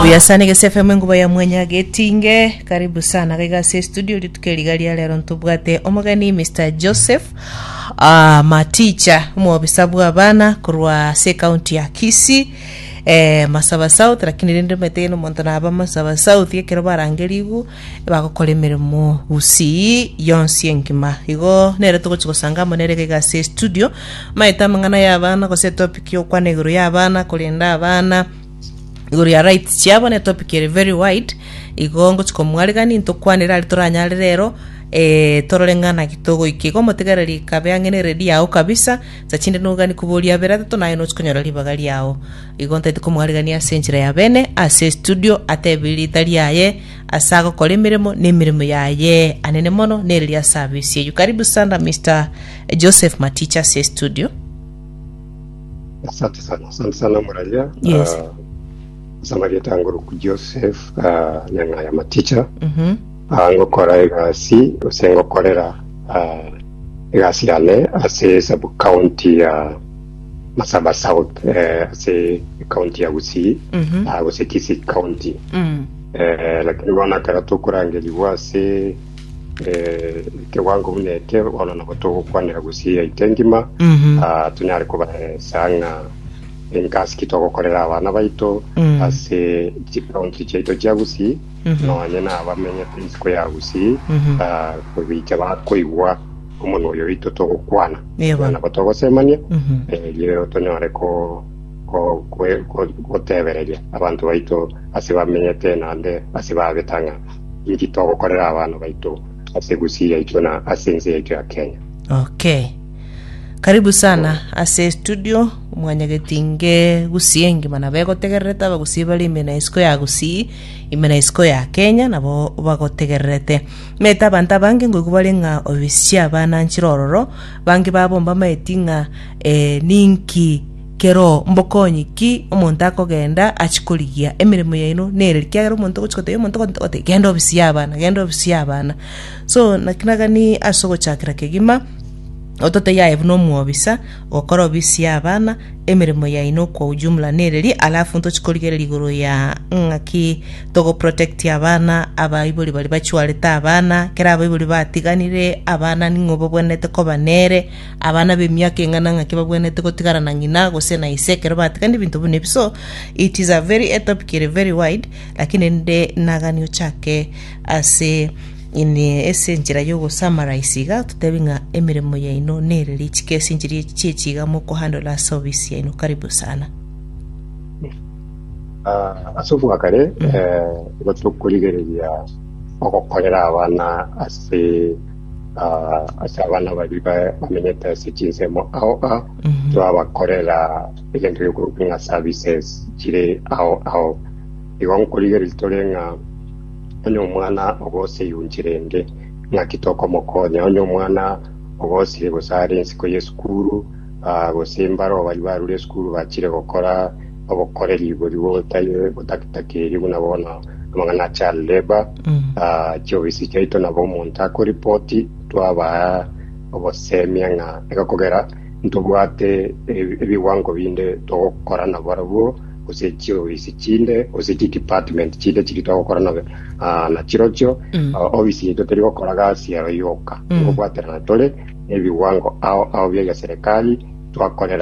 Buya sana Igesi FM enkuba ya mwanya getinge karibu sana gaiga ase studio rituko eriga ria rero ntobwate omogeni Mr Joseph uh, Maticha omwobisa bwa abana korwa ase county ya Kisii eh, Masaba South lakini rende omanyete gene omonto naba Masaba South ekero barangerigu bagokora emeremo bosii yonsi engima. Igo nere togochi gosanga amo nere iga ase estudio, maete amang'ana y'abana gose etopic y'okwana igoro y'abana, korenda abana igoro ya rights chiabo na etopic ere very wide, igo ngochi komwarigani ntokwanere aria toranyare rero, eh, torore ng'anaki togoika igo, motigereri kabe ang'e na eredio yago kabisa, Saa chinde nogani koboria abere atato naye nochi konyora ribaga riao. Igo ntaete komoarigania ase enchera ya bene ase estudio ateebie riita riaye ase agokora emeremo na emeremo yaye anene mono nere ria service eyio. Karibu sana Mister Joseph Maticha ase estudio. Asante sana, asante sana Muraria. Yes. Ah, Samarieta Ngoroku Joseph ah, Nyang'aya Maticha. Mhm. Aa ngokora egasi gose ngokorera aa egasi yane ase sub county ya Masaba South eh, ase county ya Gusii Mhm. aa gose Kisii county Mm. eh, lakini bono ekero tokorangerigwa ase eh, ekewango buna eke bono nabo togokwanera Gusii yaito engima Mhm. Ah, tunyare kobaheresa ng'a engasi ki togokorera abana baito Mm. ase chikaunti chiaito chia Gusii nonya nabamenyete isiko ya Gusii, kobicha bakoigwa omonwa oyo oito togokwana, Yebo. nabo togosemania, erio tonyore ko- ko- kwe- ko- gotebereria abanto baito ase bamenyete naende ase babeta ng'a inki togokorera abana baito ase Gusii yaito na ase ense yaito ya Kenya. Okay. Karibu sana ase studio mwanyagetinge Gusii engima nabo egotegererete Abagusii bare ime na isiko ya Gusii Ime na isiko ya Kenya nabo bagotegererete. Naete abanto abange ngoigwa bare ng'a Oisia bananchire ororo, bange babomba amaeti ng'a ee, ninki kero mbokonyi ki omonto akogenda achie korigia emeremo yaino nere? Ekiagera omonto ogochia gotebia omonto ogonto gotebia genda obisie abana, genda obisie abana. So naki nagani ase ogochakera kegima ototebia aye buna omwobisa, Gokorobisia abana emeremo yaino kwa ujumla nereria alafu ntochi korigereria igoro ya ng'aki togo protecti abana abaibori baria bachwarete abana kera abaibori batiganire abana ning'o babwenerete koba nere abana b'emiaka eng'ana ng'aki babwenerete gotigara na ng'ina gose na ise ekero batigana ebinto buna ebi so it is a very a topic ere very wide lakini nde nagani ochake Ase ine ase enchera y'ogosamaraisa iga, totebi ng'a emeremo yaino nere richiko ase enchera ye chiechi iga mokohandle ase ofisi yaino. Karibu sana. Ah, ase obwakare eh, igo tokorigereria ogokorera abana ase ah, ase abana bari ba- bamenyete ase chinsemo ao ao twabakorera egento giokorokwa ng'a services chire ao ao igo nkorigereria tore ng'a Onye omwana ogosire yunchi rende, ng'aki tokomokonya? Onye omwana ogosire gose are ensiko y'esukuru, ah, gose mbare abo baria barure esukuru bachire gokora obokoreri bori bota- botakitakeria buna bono amang'ana a child labour, ah, chiofisi chiaito nabo omonto akoripoti twabaa ogosemia ng'a egokogera Ntobwate ebigwango binde togokora nabarabwo, gose chiofisi chinde, gose chidepartment chinde chiria togokora na na chirochio ofisi yaito teri gokora gasi ero yoka, nkobwaterana tore nebigwango ao ao bi'egeserikali twakorera